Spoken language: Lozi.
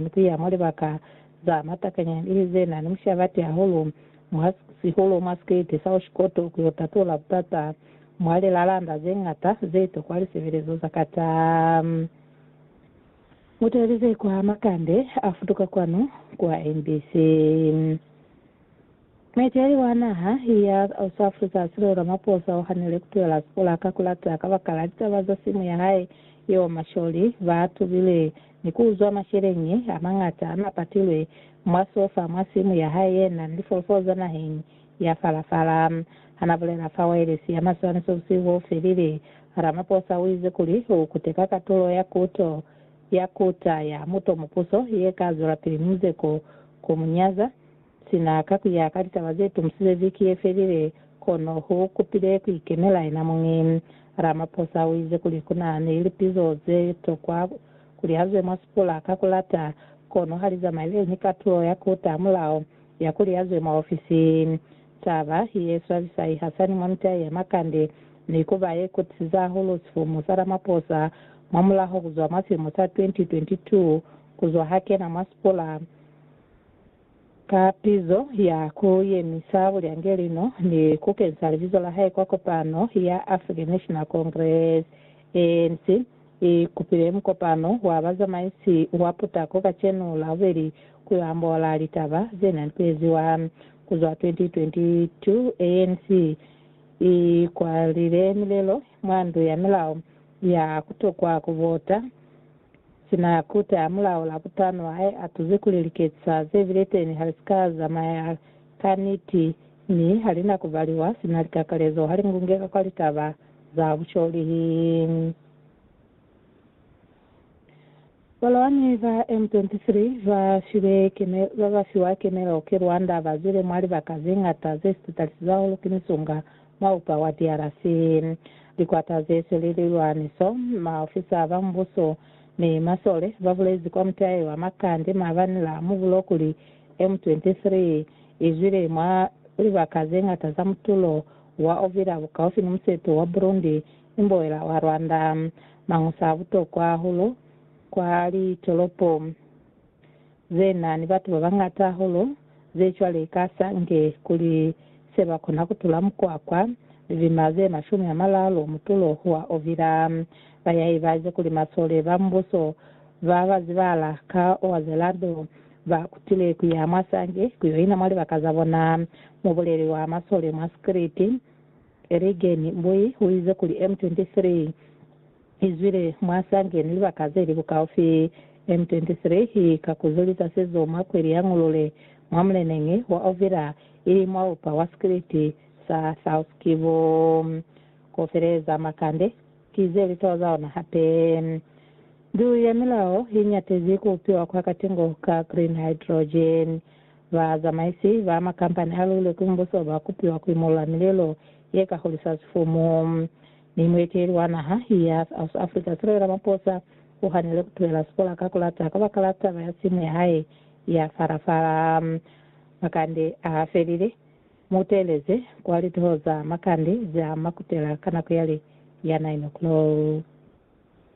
ni ku ya mwa libaka za matakanya ili ze na ni mushabati hahulu mwa sihulu mwa State South Court ku yo tatula butata mwa lilalanda ze ñata ze tokwa lisebelezo za ka ta mutelize kwa makande a futuka kwanu kwa mbc. Mueteli wa naha ya South Africa Cyril Ramaphosa u hanile ku tulela sikola ka ku lata kabakala litaba za simu ya hae yeo masholi ba tubile ni ku uzwa masheleñi a mañata a n'a patilwe mwa sofa mwa simu ya hae ye na ni lifolofolo za naheng ya Farafara. Ha n'a bulela fa waelesi ya maswaniso busihu bo felile, Ramaphosa u ize kuli u kuteka katulo ya kuto ya kuta ya muto mupuso ye ka zwelapili muzeko ku mu nyaza Sina ka ku ya ka litaba ze tumisile viki ye felile, kono hu kupile ku ikemela yena muñi. Ramaphosa u ize kuli ku na ni lipizo ze tokwa ku lihazwe mwa sipula ka ku lata, kono ha li zamaile ni katulo ya ku taha mulao ya ku lihazwe mwa ofisi. Taba ye swabisa i hasani mwa mitai ya makande, ni ku ba ye kutisiza hahulu sifumu sa Ramaphosa mwa mulaho ku zwa mwa silimo sa 2022 ku zwa ha kena mwa sipula. Ka pizo ya ku yemisa bulyangelino ni ku kensa libizo la hae kwa kopano ya African National Congress, ANC, i kupile mukopano wa bazamaisi wa putako kacenu Labobeli ku yo ambola litaba ze na nikeziwa. Ku zwa 2022, ANC i kwalile milelo mwa Ndu ya Milao ya ku tokwa ku vota. Sina ya kuta ya mulao la butano hae a tuze kuli liketsa ze bile teni ha li si ka zamaya ka niti, mi ha li na ku baliwa sina likakalezo ha li ngungeka kwa litaba za busholihi. Balwani ba M23 ba file kemelo, ba ba fiwa kemelo ki Rwanda ba zwile mwa libaka ze ngata ze si tatalisize hahulu ki misunga. Maupa wa DRC, likwata ze sweli lilwaniso, maofisa ba mubuso ni masole ba bulezi kwa mutahe wa Makande maabani la mubulo kuli M23 i zwile mwa libaka ze ñata za mutulo wa Uvira bukaufi ni museto wa Burundi ni mboela wa Rwanda, mañusa a butokwa hahulu kwa litolopo. ze na ni batu ba bañata hahulu ze cwale ka sa nge kuli se ba kona ku tula mukwakwa, lilima ze mashumi a malalu mutulo wa ovila. Ba ya ibaze kuli masole ba mubuso ba ba zibahala ka owa ze lado ba kutile ku ya mwa sange ku yo ina mwa libaka za bona. Mubuleli wa masole mwa Scritti, Erigeni Mbui, u ize kuli M23, I zwile mwa sa ngeni libaka ze li bukaufi. M23 i ka kuzulisa sizo mwa kweli ya Ngulule, mwa muleneñi wa Uvira, ili mwa upa wa sikiliti sa South Kivu. Ku feleza makande ki ze li toza ona hape. Ndu ya Milao i ñatezi ku upiwa kwa katingo ka green hydrogen. Ba zamaisi ba makampani a lule ku mbuso ba kupiwa ku imolola milelo ye ka hulisa sifumu. Mi mueteli wa naha ya South Africa, Cyril Ramaphosa, u hanile ku tuhela sikola ka ku lata kabakala taba ya simu ya hae ya fara-fara. Makande a ha felile, mu teeleze kwa lituho za makande za Makutela ka nako ya li ya 9 o'clock.